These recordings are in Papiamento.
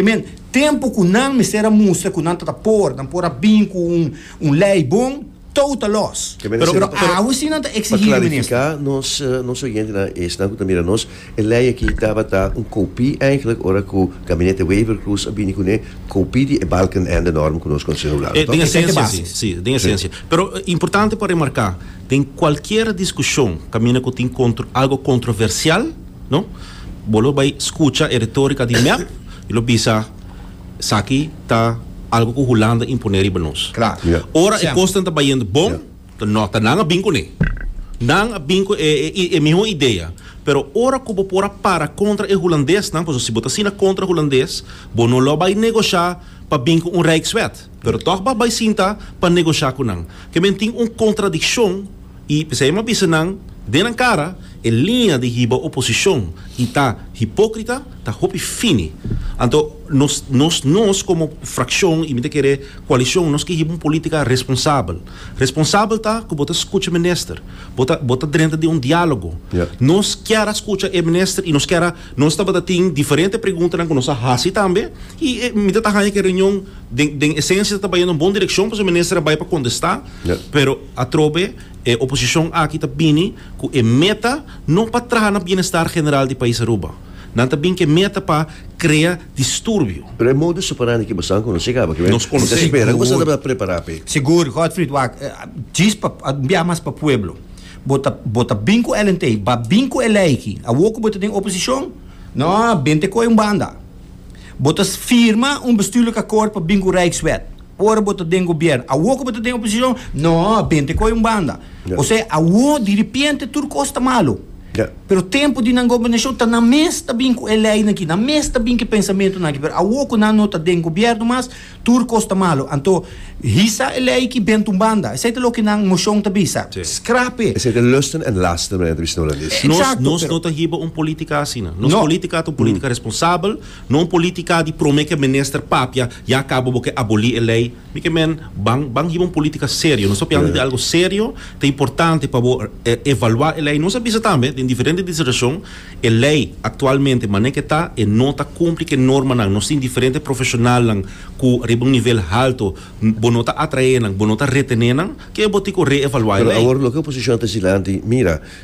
Amen. Tempu ku nan mester a mustra ku nan ta ta por, nan por a bin ku un lei bon, tou ta lòs. Pero awe si nan ta eksigí di minister. Pa klarifiká nos oyentenan, esnan ku ta mira nos, e lei aki tabata un kopí eigenlik ora ku Gabinete Wever-Croes a bini kuné, kopí di e Balkenende-norm ku nos konosenan hopi laru, to? Esensia si. Si, den esensia. Pero importante pa remarká, den kualkier diskushon kaminda ku tin algu kontroversial, No. Bo lo bai skucha e retórika di mep i lo bisa, Esaki ta algu ku Hulanda imponé riba nos. Ora e kosnan ta bayendo bon, ta nota nan a bin kuné. Nan a bin ku e e mihó idea. Pero ora ku bo por a para kontra e hulandesnan, pasobra si bo ta asina kontra hulandes, bo no lo bai negoshá pa bin ku un rijkswet, pero tòg bo a bai sinta pa negoshá ku nan. Ke men tin un kontradikshon. I p'esei mi a bisa nan den nan kara, e liña di hiba oposishon i ta hipókrita ta hopi fini. Anto nos, nos, nos komo frakshon i mi ta kere koalishon, nos ke hiba un polítika responsabel. Responsabel ta ku bo ta skucha minister, bo ta, bo ta drenta den un diálogo. Ya. Nos kier a skucha e minister i nos kier a, nos tabata tin diferente preguntanan ku nos a hasi tambe i e, mi ta ta haña ku e reunion den, den esensia ta tabata yendo na bon direkshon pasobra e minister a bai pa kontestá, Ya. pero. Atrobe e oposicion aki ta bini cu e meta no pa traha na bienestar general di pais Aruba. Nan ta bin cu e meta pa crea disturbio. Pero e modus operandi ki boso a conoce caba kibe? Nos conoce. Mi ta spera cu boso tabata prepara p'e. Sigur, Godfried, wak. Djis pa bia mas pa pueblo. Bo ta bo ta bin cu Ellen Tey, ba bin cu e ley ki. Awo cu bo ta den oposicion, no, bente coe un banda. Bo ta firma un bestuurlijk akkoord pa bin cu Rijkswet. Ora bo ta den gobièrnu, awor ku bo ta den oposishon, no, bente koi un banda. Osea, awor di ripiente tur kos ta malu. Pero tempu di nan gobernashon ta nan mes ta bin ku e leinan aki, nan mes ta bin ku e pensamentunan aki. Pero awor ku nan no ta den gobièrnu mas, tur kos ta malu. Anto, hisa e lei aki bente un banda. Esei ta loke nan moshon ta bisa. Skrape! Esei ta lusten en lasten, manera Tristan Ollandes. Nos no ta hiba un polítika asina. Nos polítika ta un polítika responsabel. No un politica di prome ke menister papia ya cabo bo ke aboli e ley mi ke men ban ban hiba un politica serio nos ta piando di algo serio ta importante pa bo evalua e ley nos a bisa tambe den diferente disertacion e ley actualmente manera ke ta e no ta cumpli ke norma nan nos tin diferente profesional nan cu riba un nivel halto bo no ta atrae nan bo no ta retene nan ke bo tin cu reevalua e ley.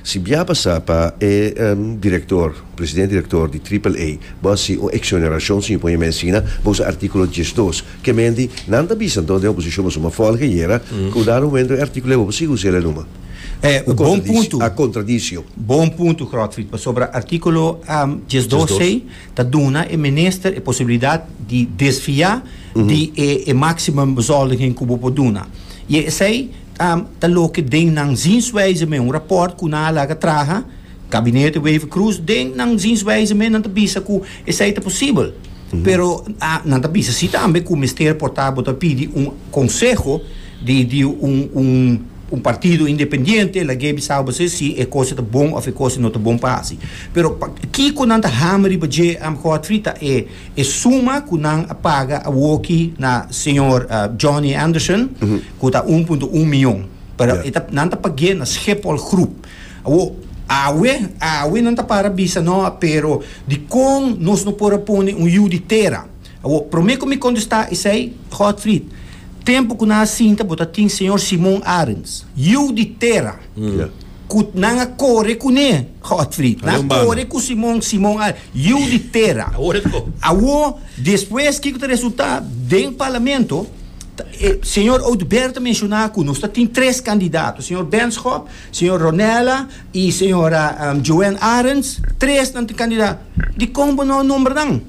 Si bia pasa pa e director, president director di Triple A, bo haci un exoneracion sin pon e mes asina, bo usa articulo diesdos. Kemendi, nan ta bisa enton den oposicion bo suma volg ayera, cu dado momento e articulo e bo por sigui usa el anuma. E un bon punto. A contradicio. Bon punto Grotfrid, pasobra articulo diesdos ey ta duna e minister e posibilidad di desvia di e maximum bezuldingen cu bo por duna. Y esey. Ta ta loke den nan zienswijze me un rapport cu nan a laga traha Gabinete Wever-Croes den nan zienswijze me nan ta bisa cu esai ta posibel pero a nan ta bisa si tambe cu mester por ta bo ta pidi un conseho di di un un un partido independiente lag'e bisao base si e cosa ta bon of e cosa no ta bon pa haci pero pa kico nan ta hama riba dje am Godfrey ta e e suma cu nan a paga awoki na señor Johnny Anderson. cu ta un punto un mion, pero e ta, nan ta pagu'e na Schiphol Groep. Awo, awe, awe nan ta para bisa no a, pero di con nos no por a pone un yiu di tera? Awo, prome cu mi contesta esey, Godfried, tempo cu nan a sinta bo ta tin Señor Simon Arends, yiu di tera! Yeah. Cu nan a core cu ne, Godfried. Nan a core cu Simon, Simon a yiu di tera. Awo, despues, kico ta resulta? Den parlamento, e, señor Oduber ta menciona cu nos ta tin tres candidato, señor Benschop, señor Ronella y señora um, Joanne Arends, tres nan tin candidato. Dicon bo no a nombra nan?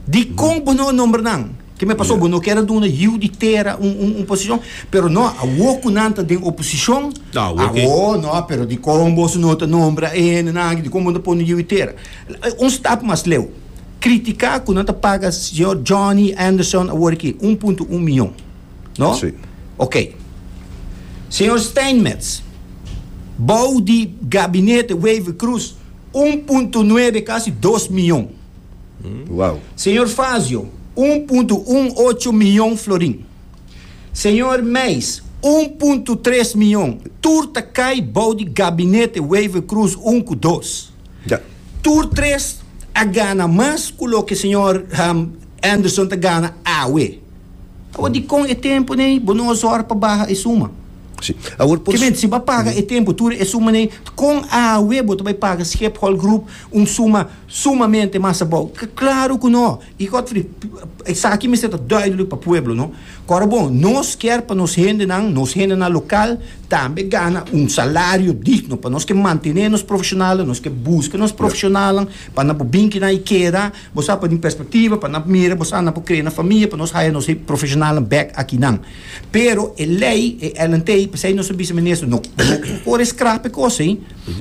Dicon bo no a nombra nan? Ke me paso bo no kier a duna yiu di tera un un un posishon pero no awo ku nan ta den oposishon awo no pero dikon boso no ta nombra e hende nan aki dikon bo no ta pone yiu di tera un stap mas leu kritika ku nan ta paga señor Johnny Anderson awor aki un punto un miyon no okay señor Steinmetz bou di gabinete Wever Croes un punto nuebe kasi dos miyon. Wow. Señor Fazio, un punto un ocho miyon florin. Señor Meis, un punto tres miyon. Tur ta kai bou di gabinete Wever-Croes un ku dos. Ja. Tur tres a gana mas ku loke señor Anderson ta gana awe. Awor dikon e tempu nei bo no a zòrg pa baha e suma? Sí. Awor por. Ke menti, si bo a paga e tempu tur e suma nei, kon awe bo ta bai paga Schiphol Group un suma? Sumamente mas abou. K, Klaru ku no! I Godfrey, P, esaki mester ta duidelik pa pueblo, no? Ku ora bon, nos kier pa nos hendenan, nos hendenan lokal, tambe gana un salario digno, pa nos ke mantené nos profeshonalnan, nos ke buska nos profeshonalnan, pa nan por bin kinan i keda, bo sa, pa di un perspektiva, pa nan mira bo sa, nan por krea nan famia, pa nos haya nos profeshonalnan bèk akinan. Pero e lei, e LNT, p'esei nos a bisa Minister, no, no por e skrap e kos ei.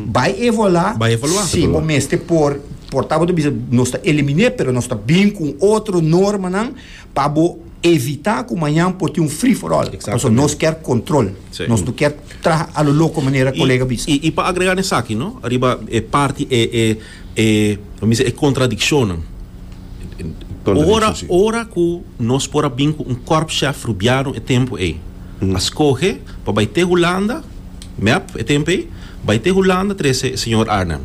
Bai evolá, Bai evaluá, ta si evaluá. bo mester por, por ta bo ta bisa nos ta eliminé pero nos ta bin ku un otro normanan pa bo evitá ku mañan por tin un free for all. Pasobra Exactamente. nos ker kontrol. Sí. Nos no ker traha a lo loko manera kolega bisa. Y, y, y pa agregar n'esaki, no, riba e parti, e, e, E, lo mester e contradiccionnan. Ora, ora cu nos por a bin cu un korpschef Rubiano e tempo ey, a scoge pa bay te Hulanda, mep, e tempo ey, bay te Hulanda trece e señor Arnhem.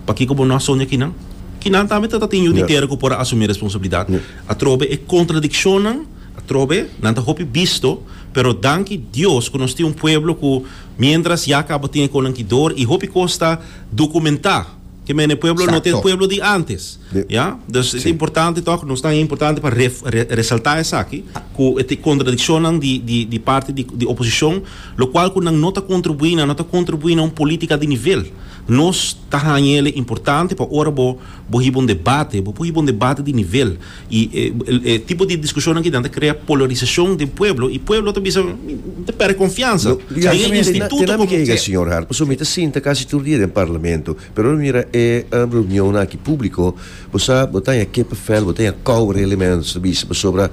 Pakico bo no a son di aki nan? Kinan tambe ta ta tin yu di tera cu por a asumi responsabilidad. Atrobe e contradiccionnan, atrobe, nan ta hopi bisto, pero danki Dios cu nos tin un pueblo cu mientras ya caba tin e conan ki door y hopi cos ta Documentá. Ke mene pueblo no ta e pueblo di antes. Ya. Dus e ta importante tòg, nos ta importante pa re, re, resaltá esaki, ku e ta e kontradikshonnan di, di, di parti di, di oposishon, lokual ku nan no ta kontribuí, nan no ta kontribuí na un polítika di nivel. Nos ta haña el e importante pa ora bo, bo hiba un debate, bo por hiba un debate di nivel. I e tipo di diskushonnan kidan ta krea polarisashon den pueblo i pueblo ta bisa mi ta pèrdè konfiansa den e instituto komo ke. Señor Hart, pasobra mi ta sinta kasi tur dia den Parlamento, pero mi mira e reunionnan aki públiko, bo sa bo ta haña kippenvel, bo ta haña kòu rele men ta bisa, pasobra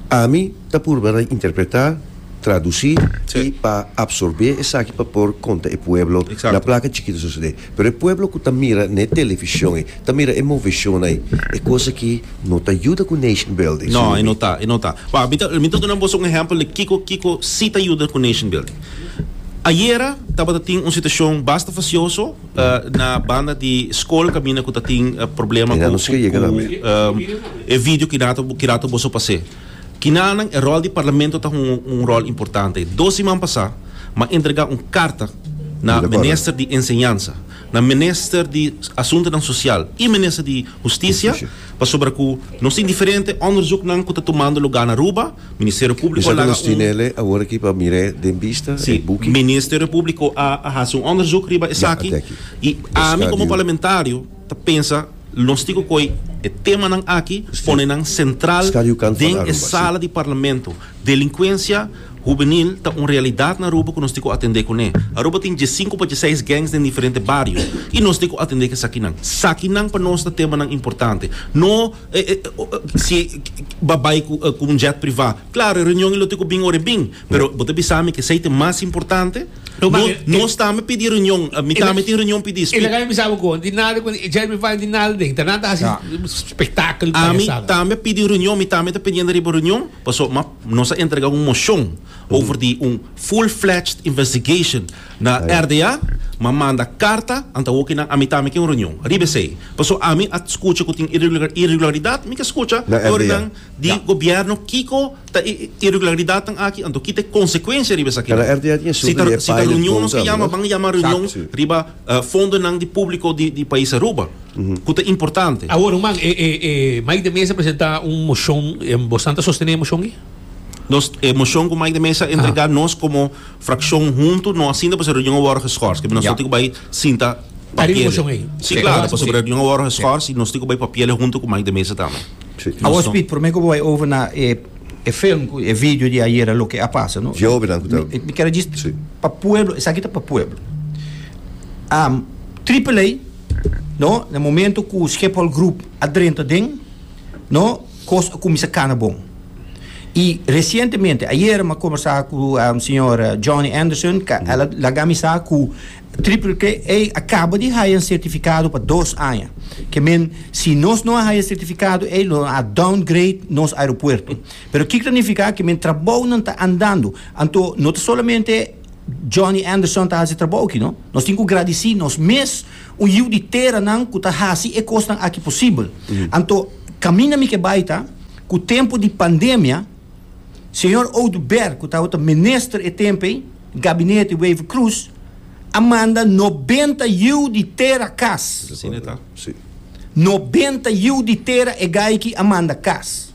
ami ta purba ta interpretá, tradusí i pa apsorbé esaki pa por konta e pueblo na plaka chikito sosodé. Pero e pueblo cu ta mira n'e television ey, ta mira e moveshona ey. E cos aki no ta yuda cu nation building, No, e no ta, e no ta. Wak, mi ta, mi ta duna boso un ehempel di kico, kico si ta yuda cu nation building. Ayera tabata tin un situacion basta facioso na banda di scol caminda cu ta tin problema cu, cu, cu e video cu kidato, kidato boso pas'e. Kinanan e ròl di Parlamento ta hunga un ròl importante. Dos siman pasá m'a entregá un karta na Minister di Enseñansa, na Minister di Asuntunan Sosial i Minister di Hustisia pasobra ku nos tin diferente òndersuknan ku ta tumando lugá na Aruba. Ministerio Públiko a laga un. Sí, Ministerio Públiko a hasi un òndersuk riba esaki i ami komo parlamentario. ta pensa nos tin cu coy e temanan aki pone nan central den e sala di Parlamento. Delincuencia hubenil ta un realidad na Aruba cu nos tin cu atende cune. Aruba tin diecinco pa dieseis gangs den diferente bario y nos tin cu atende cu esakinan. Sakinan pa nos ta temanan importante. No si ba bay cu un jet priva. Claro, e reunion y lo tin cu bin ora e bin, pero bo ta bisa mi cu esey ta e mas importante. No, no, eh, no está me pedir reunión. A mí está me tiene reunión pedir. Ele que me sabe con di nada con Jeremy Fine di nada de. Tá nada assim espetáculo. A mí está me pedir reunión, mí está me pidiendo riba reunión, paso ma nos a entregar un moción over di un full-fledged investigation na RDA. Ma manda carta anta hoki na a mí está me que un reunión. Riba sei. Paso a mí a escucha que tin irregularidad, mí que escucha por nan di gobierno Kiko Ta e irregularidadnan aki anto kita e konsekuensia riba esaki nan. Si ta si ta reunion nos a yama ban a yama reunion riba fondonan di publico di di pais Aruba cu ta importante. Awor ruman e e e Mike de Meza a presenta un mocion bosnan ta sostene e mocion aki? Nos e mocion cu Mike de Meza a entrega nos como fraccion hunto no asinta pasobra e reunion a worde geschors kico nos no tin cu bay sinta papiele si claro pasobra e reunion a worde geschors y nos tin cu bay papiele hunto cu Mike de Meza tambe. Awor Speed, prome ku bo bai over na e e film ku e video di ayera loke a pasa no. Jovennan ku ta. Mi kere djis pa pueblo, esaki ta pa pueblo. Am Triple A no na momento ku Schiphol Group a drenta den no kos a kuminsa kana bon. I resientemente ayera mi a kombersa ku señor Johnny Anderson ka el a laga mi sa ku Triple-A a kaba di haya un sertifikado pa dos aña. Ke men, si nos no a haya sertifikado ei, lo a downgrade nos aeropuerto. Pero kiko ta nifiká? Ke men trabounan ta andando. Anto no ta solamente Johnny Anderson ta hasi trabou aki, no. Nos tin ku gradisí nos mes un yiu di teranan ku ta hasi e kosnan aki posibel. Anto kaminda mi ke bai ta ku tempu di pandemia, Señor Oduber, cu tabata minister e tempo ey, gabinete Wever Croes, a manda nobenta yiu di tera cas. Asina ta. Si. Nobenta yiu di tera e gayki a manda cas.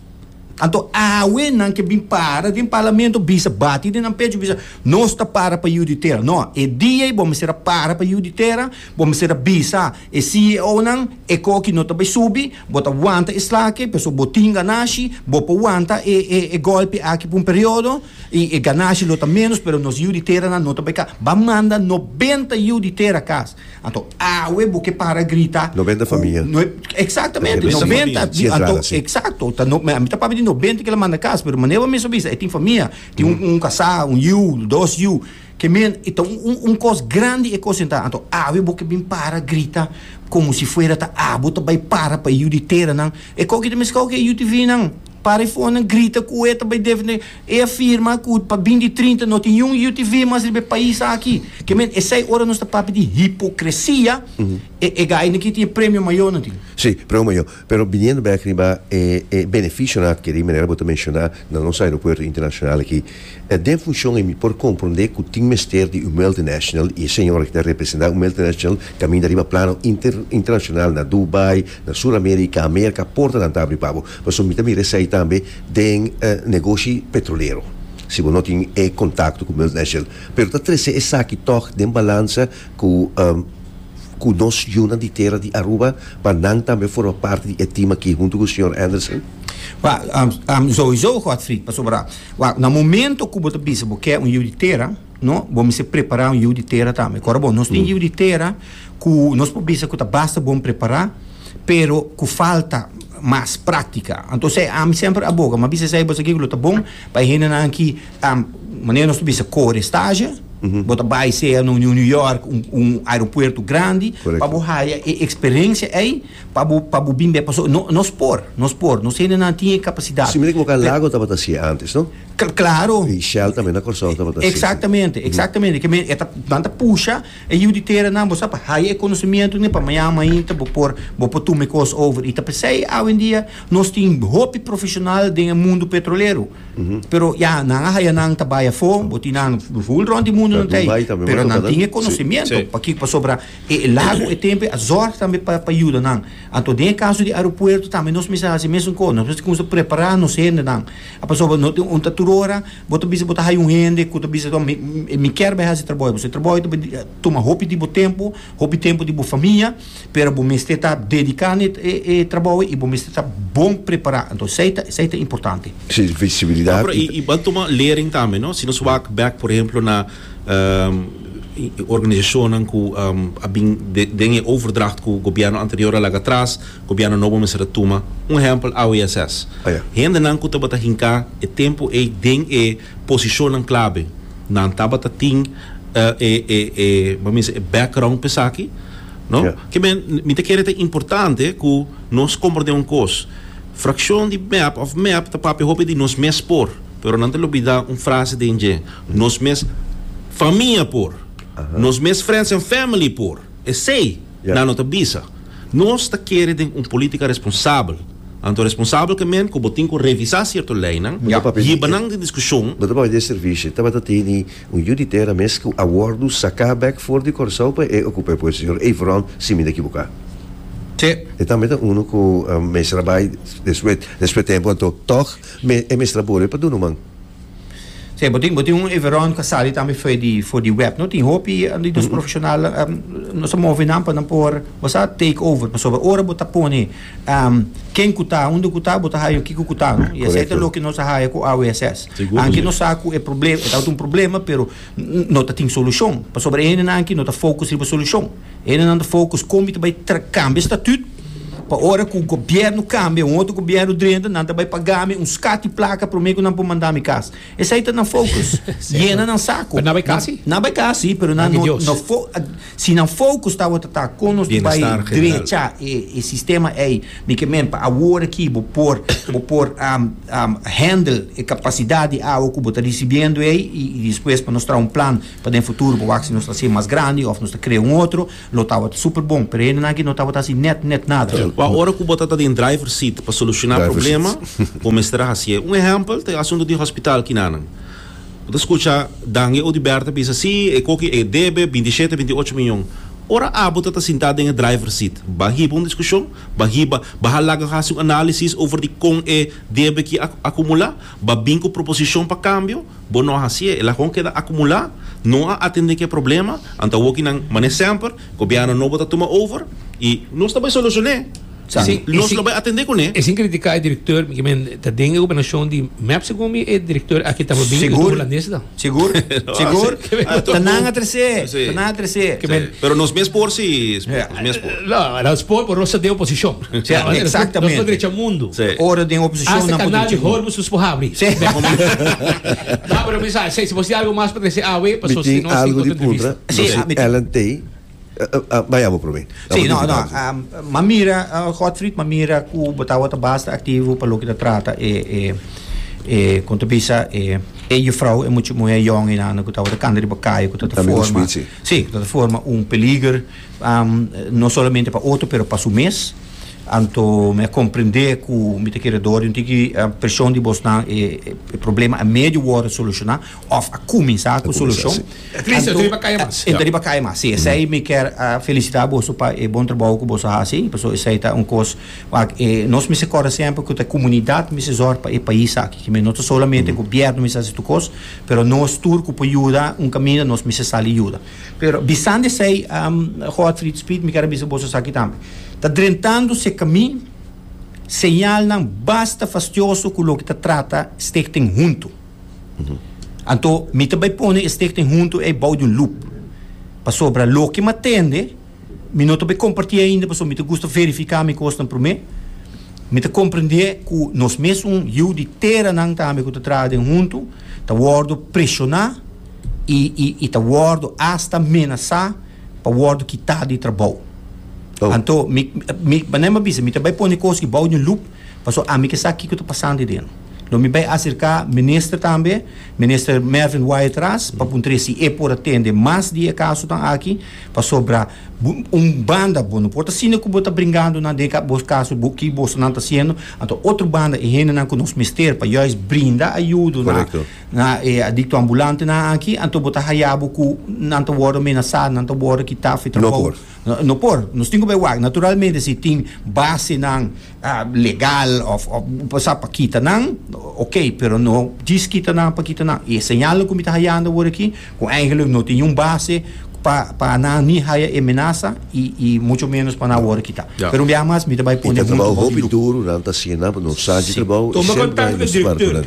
Anto awe nan ke bin para den Parlamento bisa, bati den nan pecho bisa, nos ta para pa yiu di tera. No, e dia ey bo mester a para pa yiu di tera. Bo mester a bisa e CEOnan e koki no ta bai subi, bo ta wanta e slake, pasobra bo tin ganashi, bo por wanta e e e golpe aki pa un periodo, i e ganashi lo ta menos pero nos yiu di teranan no ta bai kas. Ban manda nobenta yiu di tera kas. Anto awe bo ke para grita Nobenta ku famia. no e Exactamente, Nobenta famia. nobenta Si anto entrada, si. exacto ta no mi ta papia di nobenta ke lo manda kas pero manera bo misti a bisa e tin famia, tin un un kasá, un yiu, dos yiu, Ke men i ta un kos grandi e kosen ta. Anto awe bo ke bin para grita komo si fuera ta abo ta bai para pa e yu di teranan. E koki ta meskau ku e UTVnan. Para e fonan grita ku e ta bai defende. E a firma ku pa bin di trinta no tin niun UTV mas riba e pais aki. Ke men esei ora nos ta papia di hipokresia e gainan ki tin e premio mayonan tin. Si, premio mayo. Pero biniendo bek riba e beneficionan adkeri, manera bo ta menciona, na nos aeropuerto internacional aki, den funcion ei mi por comprende cu tin mester di un multinational y e señora ki ta representa un multinational caminda riba plano internacional na Dubai, na Sur America, America, portanan ta abri pa bo. Pasobra mi ta mira esey tambe den negoshi petrolero. Si bo no tin e contacto cu multinational. Pero ta trece esaki toch den balanza cu. ku nos yuna di tera di Aruba pa nan tambe forma parti di e team aki huntu ku señor Anderson? Wa, souiso Godfrey, pasobra wa, na momento ku bo ta bisa bo ke un yu di tera, no, bo mester prepara un yu di tera tambe. Kor bo, nos tin yu di tera ku nos por bisa ku ta basta bon prepara, pero ku falta mas praktika. Anto esei, ami semper a boga, mi a bisa esei, bo sa kiko lo ta bon pa e hendenan aki? Ta manera nos ta bisa kore staja, bo ta bai sea na un New York, un un aeropuerto grandi, pa bo haya e experencia ei, pa bo pa bo bin be, pasobra no nos por, nos por, nos hendenan tin e capacidad. Así mester cu oca lago tabata hacía antes, no? Cl claro. Y Shell tambe na Corsou tabata hacía así. Exactamente, exactamente. Ke men e ta nan ta pusha e yiu di teranan, bo sa, pa haya e conocimientonan pa mañana mainta bo por bo por tuma e cos over. Y ta p'esei awendia nos tin hopi profesional den e mundo petrolero. Pero ya, nan a haya nan ta bai afó, bo tin nan full rond di mundo nan ta ahí. Pero nan tin e conocimiento. Paki, pasobra e e lago, e tempo, a zorg tambe pa pa yuda nan. Anto den e caso di aeropuerto tambe nos mester haci e mesun cos. Nos mester cuminsa prepara nos hendenan. Pasobra no tin un ta tur ora bo ta bisa bo ta haya un hende cu ta bisa mi mi kier bai haci e trabou ei. Pasobra e trabou ei ta tuma hopi di bo tempo, hopi tempo di bo famia. pero bo mester ta dedica n'e e trabou ey y bo mester ta bon prepara, entonces esey ta esey ta importante. Si, visibilidad. Pero y y bo a tuma lering tambe no, si nos wak bek por ehemplo na organizacionnan cu a bin den e overdracht cu gobierno anterior a laga atras, gobierno nobo mester a tuma, un ehempel AWSS, hendenan cu tabata hinca e tempo ey den e. Posishonnan klabe. Nan tabata tin e e e e background pa esaki no. Ke men mi ta kere ta importante ku nos komprende un kos, frakshon di mep òf mep ta papia hopi di nos mes por, pero nan ta lubida un frase den dje, nos mes famia por, nos mes friends and family por. Esei Nan no ta bisa. Nos ta kere den un politica responsabel. Anto responsabelkemen cu bo tin cu revisa cierto leynan, yiba nan den discusion. Bo ta papia di e servicio. Tabata teni un yu di tera mes cu a wordo saca bek for di Corsou pa e ocupa e puesto, señor Eyvron, si mi ta equibuca. Te. E tambe ta uno cu mester a bay despues, despues tempo, anto toch e mester a bolbe pa Dunoman. Sea, bo tin bo tin un Everon cu a sali tambe for di for di web, no? Tin hopi di nos profesional um, nos a move nan pa nan por bo sa take over pasobra ora bo ta pone um, ken cu ta, hunde cu ta, bo ta haya kico cu ta, no? Y esey ta loke nos a haya cu AWSS. Seguro Anke si. nos sa cu e problem, e ta un problema pero n- no ta tin solucion pasobra e hendenan aki no ta focus riba solucion. Hendenan ta focus con mi ta bay tra cambia estatut pa ora cu gobierno cambia un otro gobierno drenta nan ta bay paga mi un scat di placa prome cu nan por manda mi cas. Esey ta nan focus. Yena nan saco. Pero nan bay casi? Nan bay casi pero nan no no fo si nan focus tawata ta con nos ta bay drecha e sistema ey mi ke men pa awor aki bo por bo por handle e capacidad di awa cu bo ta ricibiendo ey y despues pa nos traha un plan. Pa den futuro bo wak si nos ta haci mas grandi of nos ta crea un otro, lo tabata super bon, pero hende nan aki no tabata haci net net nada. Ahora cu bo ta ta den driver seat pa soluciona problema, bo mester a haci'e. Un ehempel ta e asunto di hospital kinanan. Bo ta scucha Dange Odubert a bisa, si, e coki e debe binti e shete, binti e ocho miyon. Ora abo ta ta sinta den e driver seat, ba hiba un discusion, ba hiba, ba halaga haci un analisis over di con e debe ki a acumula. Bo bin ku proposishon pa kambio, bo no a hasié, el a kon keda akumulá, no a atendé ku e problema, anto awokinan manera semper, gobièrnu nobo ta tuma over i. Nos ta bai solushoné, si nos lo bai atendé kuné. E sin kritiká e direktor, mi ke men ta den e gobernashon di mep segun mi e direktor aki tabata bin holandes ta. Sigur? Sigur? Ta nan a trese, ta nan a trese. Pero nos mes por si, nos mes por. No, nos por, pero nos ta den oposicion. Exactamente. Nos por drecha mundo. Ora den oposicion nan por drecha mundo. Hasta canal di Hormuz nos por habri. No, pero mi sa, si bo tin algo mas pa trese awe, pasobra si no, si bo tin entrevista. Algo di puntra, nos tin Ellen Tey. Bai abo probé. Sí, no, no. M'a mira, Godfried, m'a mira cu bo tabata basta activo pa loke ta trata e, e, e, como ta bisa, e, e juffrouw, e much, muher jong einan cu tabata canta riba caye, cu tabata Tambe forma, Louis Piet, sí. sí, cu tabata forma un peliger, no solamente pa otro, pero pa su mes. Anto mi a comprende cu mi ta kere door di un tiki presion di bosnan e, e, e problema a medio worde soluciona of a cuminsa cu solucion. Ta tristi, ta riba kaya mas. Ta riba kaya mas, si. Esei mi ker felisitá boso pa e bon trabou ku boso a hasi, pasobra esei ta un kos wak e nos mester kòrda semper ku ta e komunidat mester zòrg pa e pais aki, ke mi no ta solamente gobièrnu mester hasi tur kos, pero nos tur ku por yuda un kaminda nos mester sali yuda. Pero bisandi esei, Godfrid Speed, mi ker a bisa boso esaki tambe. Ta drentando se kami, señalnan basta fastioso ku loke ta trata Stichting Huntu. Anto mi ta bai pone e stichting hunto ei bou di un loop. Pasobra loke mi a tende, mi no ta bai kompartí ainda pasobra mi ta gusta verifiká mi kosnan promé. Mi ta komprendé ku nos mes un yu di teranan tambe ku ta traha den hunto ta wòrdu preshoná i i ta wòrdu asta menasá pa wòrdu kitá di trabou. Anto mi mi manera mi a bisa mi ta bai pone kos ei bou di un loop. Paso ami ke sa kiko ta pasando ey deno. Lo mi bay acerca Minister tambe, Minister Mervin Wyatt Ras, pa puntra si ey por a tende mas di e casonan aki, pasobra un banda bo no por ta sino cu bo ta bringando nan den bo caso bo ki boso nan ta haciendo, anto otro banda e hendenan cu nos mester pa juis brinda ayudo na na e adicto ambulantenan aki, anto bo ta haya bo cu nan ta wordo amenasa, nan ta wordo kita fi trabou. No por, nos tin ku bai wak. Naturalmente si tin basenan legal òf sa pa kita nan, okey, pero no djis kita nan pa kita nan. E señalnan ku mi ta hayando wor aki, ku eigentlik no tin niun base pa pa nan ni haya e menasa i i mucho menos pa nan wòrdu kita. Pero un biaha mas mi ta bai pone huntu bou di grupo. Hopi duru nan ta hasinan, pasobra nos sa dje trabou i sempre nos ta parke nan.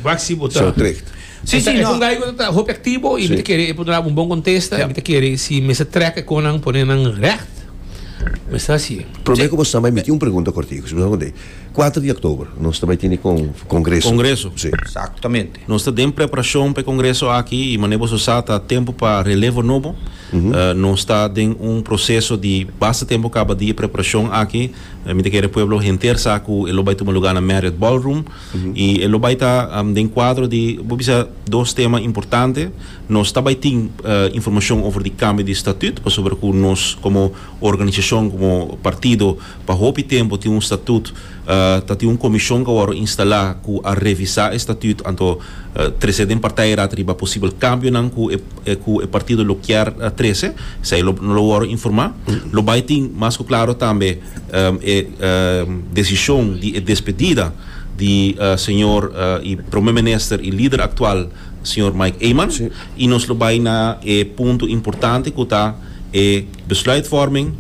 Waxi bo ta. Zo trekt. Si, si, no. E ta un gai ku ta hopi aktibo i mi ta kere e por duna un bon kontesta i mi ta kere si mester trèk e konan pone nan règt. Mester hasi. Promé ku bo sa bai miti un pregunta kòrtiku, si bo ta hopi. Kuater di oktober nos ta bai tene kongreso. Kongreso. Si. Eksaktamente. Nos ta den preparashon pa e kongreso aki i mane boso sa ta tempu pa relevo nobo. Nos ta den un proseso di basta tempu kaba di e preparashon aki. Mi ta kere pueblo henter sa ku e lo bai tuma lugá na Marriott Ballroom. I e lo bai ta den kuadro di, bo bisa, dos tema importante. Nos ta bai tin informashon over di kambio di statut, pasobra ku nos komo organisashon, komo partido, pa hopi tempu tin un statut, ta tin un komishon ku a wòrdu instalá ku a revisá e statut anto trese den partijraad riba posibel kambionan ku e ku e partido lo kier trese. Esei lo wòrdu informá. Lo bai tin mas ku klaro tambe. e desishon di e despedida di señor y Prome Minister y lider actual señor Mike Eman y nos lo bay na e punto importante cu ta e besluitvorming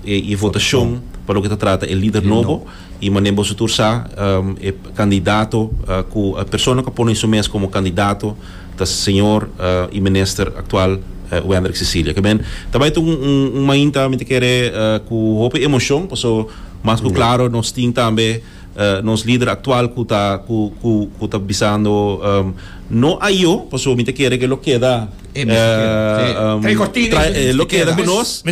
y e votashon pa loke ta trata e lider nobo y manera boso tur sa e candidato cu persona cu a pone su mes como candidato ta señor y minister actual Wendrick Cecilia que men ta bay tur un mainta mi ta kere cu hopi emocion paso mas cu claro nos tin tambe nos lider actual cu ta cu ta bisando no ayo paso mi ta kere que lo keda lo keda cu nos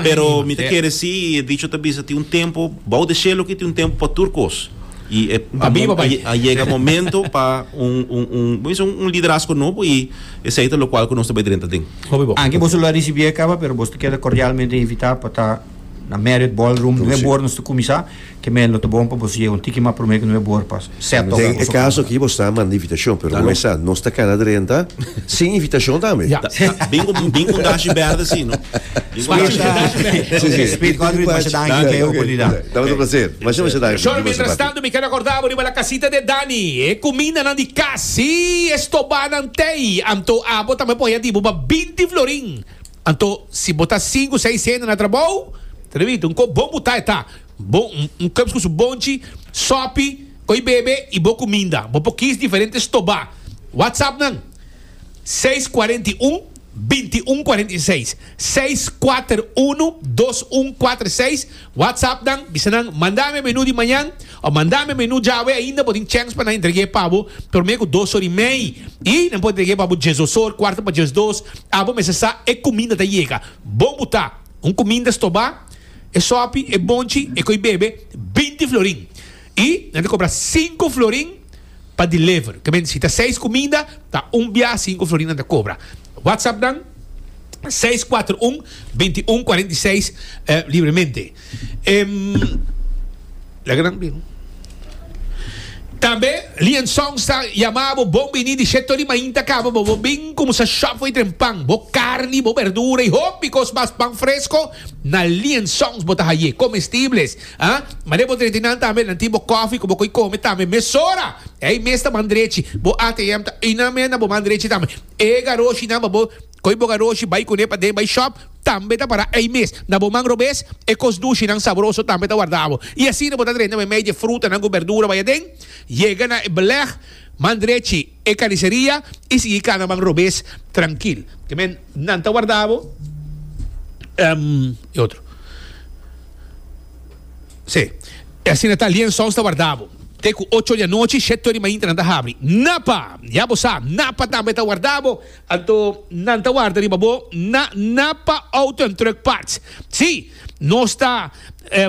pero mi ta kere si y e dicho ta bisa tin un tempo bao de shelo aki tin un tempo pa tur cos. y e Ta biba bai. a yega momento pa un un un bo dice un un liderazgo nobo y esey ta locual cu nos ta bay drenta den. Hopi bo. Aki boso lo a ricibié caba, pero boso ta keda cordialmente invitá pa ta na Marriott Ballroom True, nueve sí. bor nos ta cuminsá. Ke men lo ta bon pa boso yega un tiki mas promé ke nueve bor pa set ora Den e boso caso cama. aki boso ta manda invitacion, pero como Aló. esa nos ta cana drenta sin invitacion tambe. Ya. Ta- ta- Bin cu bin cu un dashi berde si no. Bin cu un Spacio dashi- de Dashi Band. Sí, sí. Speed Godfrey, masha danki Danki, pe oké. oportunidad. Dame un placer. Shor, mientras tanto mi keda korda bo riba la kasita de Dani. E kumindanan di kas si e stobá nan t'ei, anto abo tambe por haya di bo pa binti florin. Anto si bo ta sinku, seis hende na trabou, ta debí tin un kop bon butá, e ta bon, un kop ku su bonchi, sòpi, koi bebe i bo kuminda. Bo por kis diferente stobá. WhatsApp nan, seis kuarenta i un, binti un kuarenta i seis, seis kuater unu, dos un kuater seis. WhatsApp nan, bisa nan, Manda mi e menu di mañan, o Manda mi e menu djawe ainda, bo tin chèns pa nan entreg'é pa bo promé ku dos or'i mei, i nan por entreg'é pa bo djes osor, kuarta pa djes dos, abo mester sa e kuminda ta yega. Bon bu ta, un kuminda stobá, e sòpi, e bonchi, e koi bebe, binti florin. Y nan ta cobra cinco florin pa deliver. Ke mente si ta seis cuminda ta un biaha cinco florin nan ta cobra. WhatsApp nan seis cuatro un veinti un cuarenta y seis libremente. Em laga nan bini. Tambe Lian Songs ta yama bo bon bini di Chet Tony mainta caba bo bo bin cuminsa shop for y tren pan, bo carni, bo berdura y hopi cos mas pan fresco na Lian Songs bo ta haye comestibles. Ha? Mane bo drenti nan tambe, nan tin bo kòfi ku bo koi kome tambe mesora! Ei mes ta man drechi, bo ATM ta einan men na bo man drechi tambe. E garochinan pa bo koi bo garochi bai kuné paden bai shòp tambe ta pará ei mes na bo man robes. E kos dushinan sabroso tambe ta warda bo. I asina bo ta drenta mei mei di e frutanan ku bèrdura bai aden. Yega na e belèg man drechi. e kariseria i sigui kana ban robes trankil. Te men nan ta warda bo. Um, e otro. Sí. E asina ta Lien Sons ta warda bo. Te ku ocho di anochi, sheto di mainta nan ta habri. Napa, ya bo sa, Napa tambe ta warda bo. Anto nan ta warda riba bo na Napa Auto and Truck Parts. Sí. Nos ta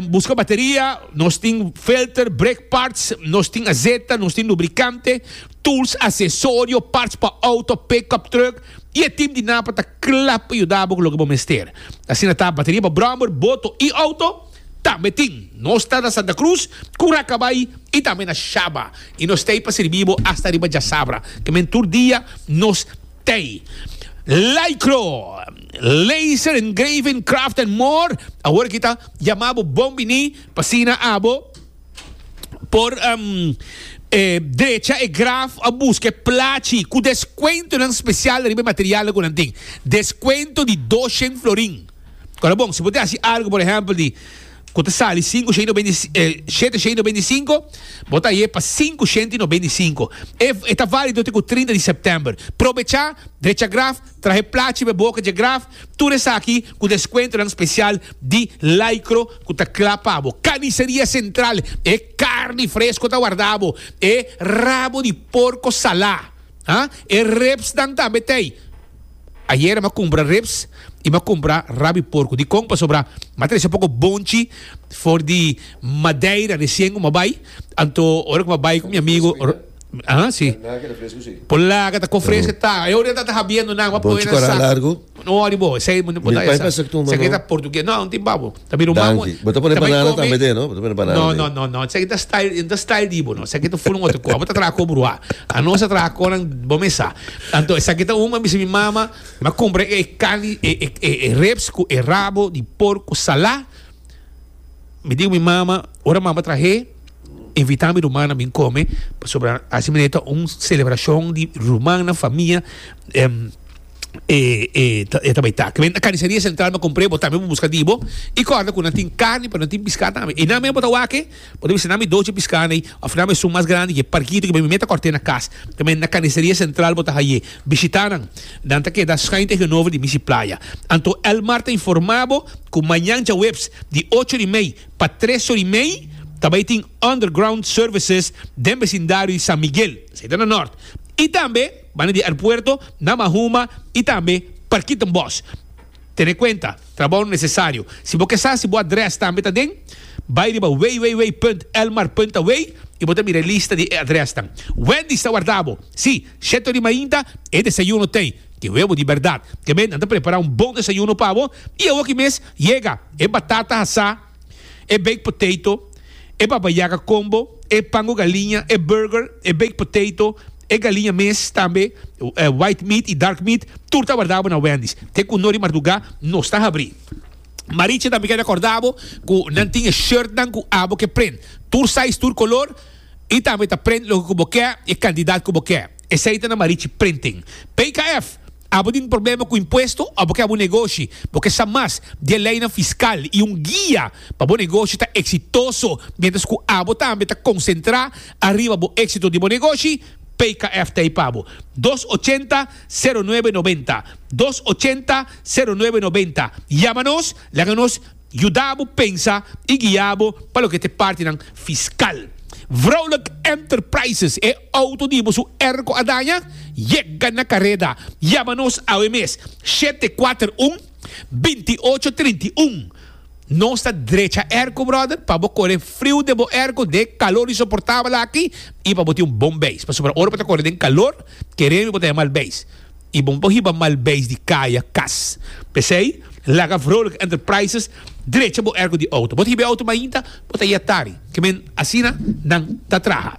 buska bateria, nos tin filter, brake parts, nos tin azeta, nos tin lubricante, tools, accesorio, parts pa auto, pick-up truck y e team di Napa ta kla pa yuda bo cu loke bo mester. Asina ta bateria pa brommer, boto y auto tambe tin. Nos ta na Santa Cruz, Curacabai y tambe na Shaba y nos ta ey pa sirbi bo hasta riba djasabra. Ke men tur dia nos. Tey, Lycro, Laser Engraving Craft and More, awor kita yama bo bon bini pa asina abo por drecha e graf o buska e plachi ku deskuentonan spesial riba e materialnan ku nan tin. Deskuento di doshen florin. Kora bon, si bo ta hasi algu, por ehèmpel, di. ku ta sali sinku shenti no bindi i e shete shenti no bindi i sinku, bo ta ye pa sinku shenti no bindi i sinku. E e ta válido te ku trinta di sèptèmber. Probechá, drecha graf, trahe plachi pa e boka dje graf, tur esaki ku deskuentonan spesial di Lycro ku ta kla pa bo. Kaniseria Sentral, e karni fresko ta wardá bo, e rabo di porko salá, ha? E rèpsnan tambe t'ei. Ayer m'a cumpra ribs y m'a cumpra rabi porco. Dicon? Pasobra m'a trece poco bonchi for di Madeira recien cu m'a bay. Anto ora cu m'a bay cu mi amigo Ro-. Aha, si. Por laga ta cofresca ta. E ora ta ta habiendo nan. M'a poi nan sa. Bonchi cora largo. No wori bo. Esey m'a pasa cu tu mano. Esaki ta portugues. No, tin babo. Ta bira un man Danki. Bo ta pone tambe banana tambe komi- den, no? Bo ta pone banana No, den. no, no, no. Seki ta style, yo no ta style di bo, no. Seki ta full un otro koa. Bo ta traha ko bruha. Anos a traha konan, bo mes sa. Anto, esaki ta un, mi a bisa mi mama, mi a compra e carni, e, e, e, e ribs cu e rabo di porco salá. Mi dico mi mama, ora mama trahe, invita mi ruman na bin come, pasobra así manera ta un celebracion di ruman na famia, em, e e e ta bai ta ke benta carniceria central me compré bo tambe bo busca dibo y corda cu nan tin carni pero nan tin piscado tambe y nan men bo ta wake bo ta bisa nan mi doce piscado ay of nan mi esun mas grandi ke parkito ke mi meta corte na cas ta me na carniceria central bo ta haye bishita nan nan ta keda schuin tegenover di Misi Playa anto Elmar ta informa bo cu mañan djaweps di ocho ori mei pa tres ori mei ta bai tin underground services den becindario di San Miguel esei ta na Norte y tambe. Banda di aerpuerto na Mahuma y tambe Parkietenbos. Tene cuenta, trabao necesario. Si bo ke sa si bo adres tambe ta den, bay riba www.elmar.away y bo ta mira e lista di e adresnan. Wendy's ta warda bo. Si, shet ori mainta e desayuno t'ey ke webo di berdad. Te men nan ta prepara un bon desayuno pa bo y awoki mes yega e batata asá. e baked potato, e baba yaga combo, e pan cu galiña, e burger, e baked potato, e galiña mes, tambe white meat y dark meat, tur ta wardabo na Wendy's. Te cu no di marduga nos ta habri. Maricha tambe keda cordabo cu nan tin e shirtnan cu abo ke prent, tur size, tur color y tambe ta prent loke cu bo ke y e cantidad cu bo ke. Esei ta na Marichi Printing. PKF, Abo tin problema ku impuesto o bo ke abo negoshi? Bo ke sa mas di e leinan fiskal i un guia pa bo negoshi ta eksitoso miéntras ku abo tambe ta konsentrá ariba bo éksito di bo negoshi? PKF ta ei pa bo. Dos ochenta, sero nuebe nobenta, Dos ochenta, sero nuebe nobenta, Yama nos, laga nos. Yuda bo pensa i guia bo pa loke ta e partinan fiskal. Vrolijk Enterprises, e outo di bo su erko a daña? Yega na kareda! Yama nos awe mes, shete kuater un, binti ocho trinta i un. Nos ta drecha erko, bròder, pa bo kore friu den bo erko, den e kalor insoportabel aki, i pa bo tin un bon beis. Pasobra ora bo ta kore den kalor, keremi bo ta yamal beis. I bon pa hiba mal beis di kaya, kas. P'esei, laga Vrolijk Enterprises drecha bo ergo di outo. Bo ta hiba e outo mainta, bo ta yet tari. Ke men asina nan ta traha.